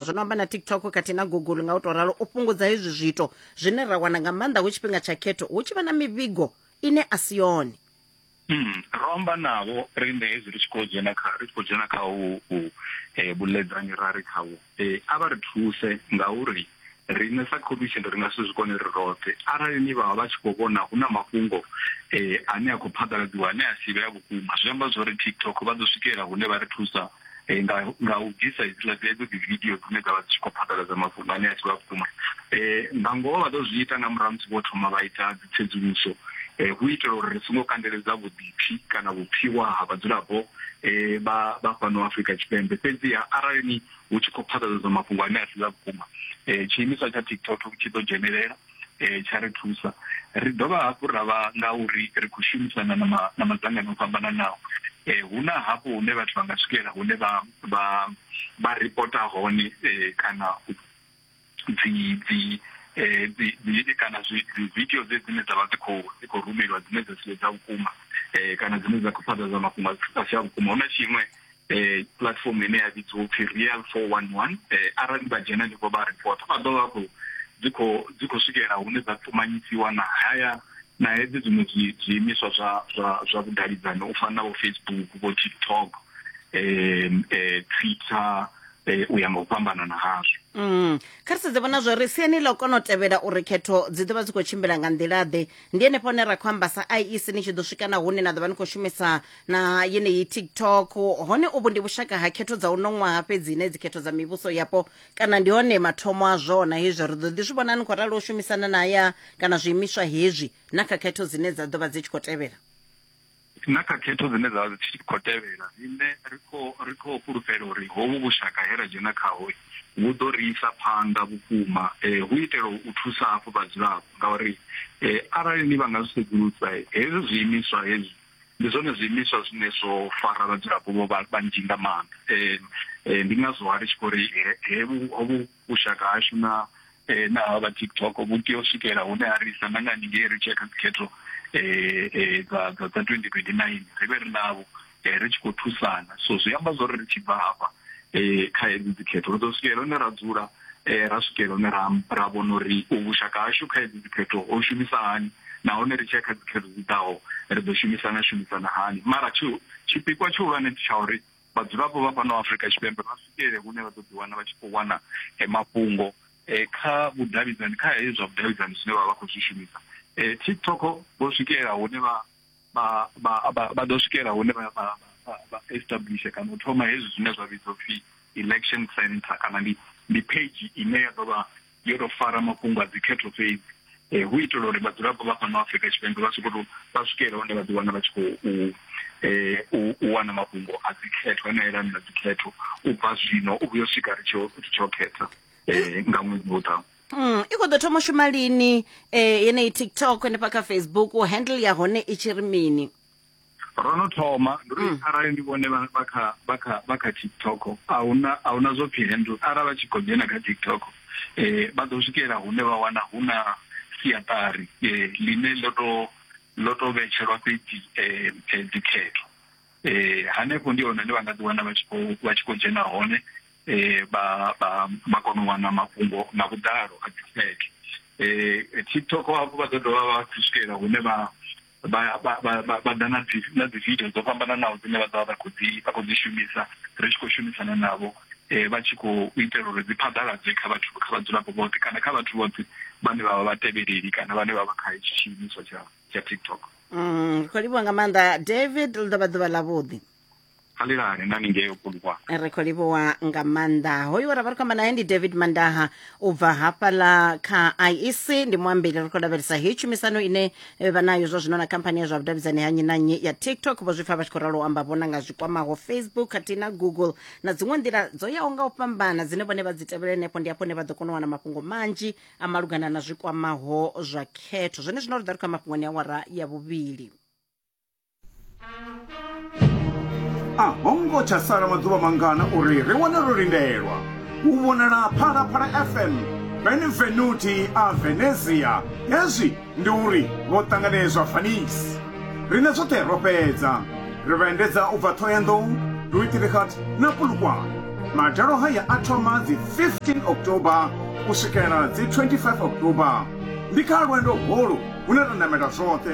zwo no amba na tiktok kati na google nga u to ralo u fhungudza hezwi zwiito zwine ra wana nga maanḓa hu tshifhinga tsha khetho hu tshi vha na mivhigo ine a si yone hmm, ro amba navho riṋe hezwi ri tshi khou dzhena kha ri tshi khou dzhena kha u eh, vhuledzani ra ri khavho eh, a vha ri thuse ngauri riṋe sa commission ri nga si zwi kone ri roṱhe arali ni vhavha vha tshi khou vhona hu na mafhungo um ane a khou phaḓaladziwa ane a si vhe a vhukuma zwi amba zwo ri tiktok vha ḓo swikelela hune vha ri thusa eh, nga nga u bvisa hedzila dzedzo dzi video dzine dza vha dzi tshi khou phaḓaladza mafhungo ane a si vha vhukuma eh, nga ngoho vha ḓo zwi ita nga murahu musi vho thoma vha ita dzi tsedzuluso eh, hu itela uri ri songo kandeledza vhuḓipfi kana vhupfiwa ha vhadzulapo eh, vha vha fhano Afrika Tshipembe fhedziha arali ni hu tshi khou phaḓaladzwa mafhungo ane a si vha vhukuma eh, tshiimiswa tsha TikTok tshi ḓo dzhenelela tsha ri thusa. Ri dovha hafhu ra vha ngauri ri khou shumisana na madzangano o fhambananaho, hu na hafho hune vhathu vha nga swikela hune vha vha vha ripota hone kana dzi dzi dzi kana zwi video dze dzine dza vha dzi khou dzi khou rumeliwa dzine dza si dza vhukuma kana dzine dza khou phaḓaladza mafhungo a si a vhukuma. Hu na tshiṅwe eh platform ine ya vhidziwa upfi real 411 eh arali vha dzhena ndivho vha report vha ḓo vha khou dzi khou dzi khou swikelela hune dza ṱumanyisiwa na haya na hedzi dziṅwe zwiimiswa zwa zwa zwa vhudavhidzani u fana na vho facebook vho tiktok eh twitter eh, u ya nga u fhambanana hazwo mm. kha ri sedze vhona zwori siani ḽa u kona u tevhela uri khetho dzi ḓo vha dzi khou tshimbila nga nḓila-ḓe ndi henefho hune ra khou amba sa iec ni tshi ḓo swika na hune na ḓo vha ni khou shumisa na yeneyi tiktok hone uvhu ndi vhushaka ha khetho dza uno ṅwaha fhedzi ine dzikhetho dza mivhuso yapo kana ndi hone mathomo a zwona hezwi ri ḓo ḓi zwi vhona ni khou ralo u shumisana na ya kana zwiimiswa hezwi na kha khetho dzine dza ḓo vha dzi tshi khou tevhela na kha khetho dzine dza vha dzi tshi khou tevhela riṋe ri khou ri khou fhulufhela uri hovhu vhushaka he ra dzhena khaho vhu ḓo ri isa phanḓa vhukuma um hu itela u thusa hafhu vhadzulapo ngauri um arali ni vha nga zwi sedzulusa hezwi zwiimiswa hezwi Ndi zwone zwiimiswa zwine zwo fara vhadzulapo vho vha vhanzhi nga maanḓa. Ndi ngazwo ha ri tshi khou ri he vhu hovhu vhushaka hashu na na havha vha TikTok vhu tea u swikela hune ha ri isa na nga haningei ri tshi ya kha dzi khetho dza dza dza twendi twendi naini ri vhe ri navho ri tshi khou thusana. So zwi amba zwori ri tshi bva hafha kha hedzi dzi khetho ri ḓo swikelela hune ra dzula ra swikela hune ra ra vhona uri vhushaka hashu kha hedzi dzikhetho ho shumisa hani nahone ri tshia kha dzikhetho dzi ḓaho ri ḓo shumisana shumisana hani mara tshi tshipikwa tshihulwane ndi tsha uri vhadzulapo vha fhano Afrika Tshipembe vha swikelele hune vha ḓo ḓi wana vha tshi khou wana mafhungo kha vhudavhidzani kha hezwi zwa vhudavhidzani zwine vha vha khou zwi shumisa TikTok vho swikelela hune vha vha vha vha vha ḓo swikela hune vha vha vha establish kana u thoma hezwi zwine zwa vhidzwa upfhi election center kana ndi ndi page ine ya ḓo vha yo tou fara mafhungo a dzikhetho fhedzi eh hu itela uri vhadzulapo vha fhano Afrika Tshipembe vha soko tou vha swikela hune vha ḓi wana vha tshi khou eh u wana mafhungo a dzikhetho ane a yelana na dzikhetho u bva zwino u vhuyo swika ri tshi ri tshi khetha eh nga ṅwedzi wo ḓaho Mm, i khou ḓo thoma u shuma lini eh, yeneyi tiktok henefha kha facebook handle ya hone i tshi ri mini ro no thoma ndi uri arali ndi vhone vha vha kha vha kha vha kha tiktok a huna a huna zwo pfhi handle arali vha tshi khou dzhena kha tiktok eh vha ḓo swikela hune vha wana hu na siaṱari eh ḽine ḽo to ḽo to vhetshelwa fhedzi eh eh, dzikhetho eh hanefho ndi hone hune vha nga ḓi wana vha tshi khou vha tshi khou dzhena hone eh, vha vha vha kona u wana mafhungo nga vhuḓalo a dzi fake eh, tiktok hafhu vha ḓo dovha vha tshi swikelela hune vha vha vha vha vha- vha ḓa na dzi na dzi video dzo fhambananaho dzine vha ḓovha vha khou dzi vha khou dzi shumisa ri tshi khou shumisana navho eh, vha tshi khou itela uri dzi phaḓaladzwe kha vhathu kha vhadzulapo vhoṱhe kana kha vhathu vhoṱhe vhane vha vha vhatevheleli kana vhane vha vha kha hetshi tshiimiswa tsha tsha tiktok Mm, ri khou livhuwa nga maanḓa david ḽi ḓo vha ḓuvha ḽavhuḓi khalilani nani ngei okulukwa ri khou livhuwa nga maanḓa hoyu ra vha ri khou amba naye ndi david mandaha u bva hafhaḽa kha iec ndi muambeli ri khou lavhelesa heyi tshumisano ine eh, vha nayo zwa zwino na khamphani ya zwa vhudavhidzani ha nnyi na nnyi ya tiktok vho zwi pfa vha tshi khou ralo u amba vhona nga zwi kwamaho facebook khathihi na google na dziṅwe nḓila dzo yaho nga u fhambana dzine vhone vha dzi tevhela henefho ndi hafho hune vha ḓo kona u wana mafhungo manzhi a malugana na zwi kwamaho zwa khetho zwone zwino ri ḓa ri khou ya mafhungoni ya wara ya vhuvhili a ho ngo tsha sala maḓuvha mangana uri ri wane ro lindelwa u vhonala phalaphala fm benvenuti a venezia hezwi ndi uri vho ṱanganedzwa fanisi rine zwoṱhe ro fhedza ri vha endedza u bva ṱhohoyanḓou duitrigat na pulukwane madalo haya a thoma dzi 15 oktoba u swikela dzi 25 oktoba ndi kha lwendo holu hune ra namela zwoṱhe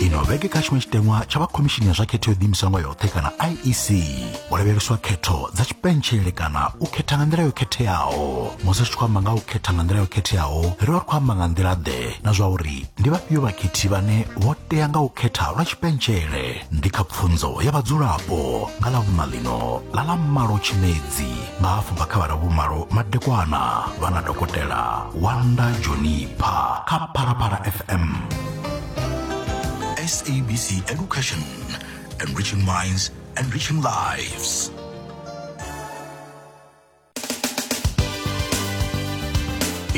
ino vhege kha tshiṅwe tshiteṅwa tsha vha khomishini ya zwa khetho yo ḓiimiswa nga yoṱhe kana iec ho lavheleswa khetho dza tshipentshele kana u khetha nga nḓila yo khetheaho musi ri tshi khou amba nga u khetha nga nḓila yo khetheaho ri vha ri khou amba nga nḓila ḓe na zwa uri ndi vhafhio vhakhethi vhane vho tea nga u khetha lwa tshipentshele ndi kha pfunzo ya vhadzulapo nga ḽa vhuṋa ḽino ḽa ḽa malo tshimedzi nga afho nga khavara vhumalo madekwana vha na dokotela wanda jonipha kha phalaphala fm sabc education enriching minds enriching lives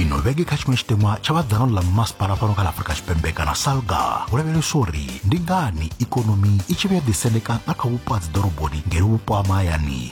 ino vhege kha tshiṅwe tshitemwa tsha vhadzano ḽa masipala fhano kha ḽa afurika tshipembe kana salga hu lavheleswa uri ndi ngani ikonomi i tshi vhuya ḓisendeka nga kha vhupo ha dziḓoroboni ngeno vhupo ha mahayani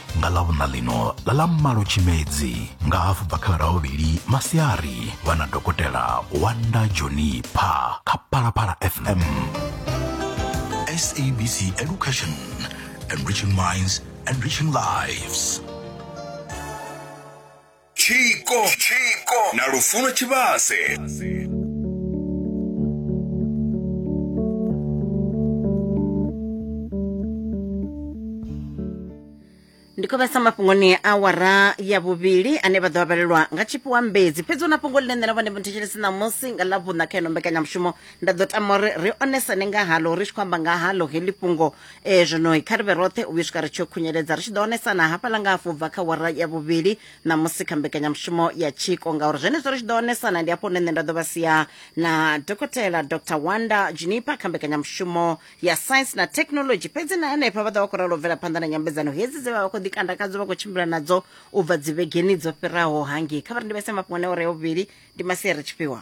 nga ḽa vhuṋa ḽino ḽa ḽa malo tshimedzi nga hafu bva kha ravhuvhili masiari vha na dokotela wanda joni pha kha phalaphala fm sabc education enriching minds enriching lives tshiko na lufuno tshivhase ndi khou vhesa mafhungoni a awara ya vhuvhili ane vha ḓo vhalelwa nga tshifhiwa mbedzi fhedzi hu na fhungo ḽine nṋe na vhone muthetshelesi ṋamusi nga ḽa vhuṋa kha ino mbekanyamushumo nda ḓo tama uri ri onesane nga halo ri tshi khou amba nga halo heḽi fhungo e zwinoi kha ri vhe roṱhe u vhuya swika ri tshi khunyeledza ri tshi ḓo onesana hafhaḽa nga hafhu bva kha wara ya vhuvhili na musi kha mbekanyamushumo ya tshiko ngauri zwenezwo ri tshi ḓo onesana ndi hafho hune nṋe nda ḓo vha sia na dokotela dr wanda junipa kha mbekanyamushumo ya science na technology fhedzi na henefha vha ḓo vha khou ralo bvela phanḓa na nyambedzano hedzi dze vha vha khou ḓikandakadzo vha khou tshimbila nadzo u bva dzivhegeni dzo fhiraho hangei kha vha ri ndi vhese mafhungo ne ore ya vhuvhili ndi masia ri tshifhiwa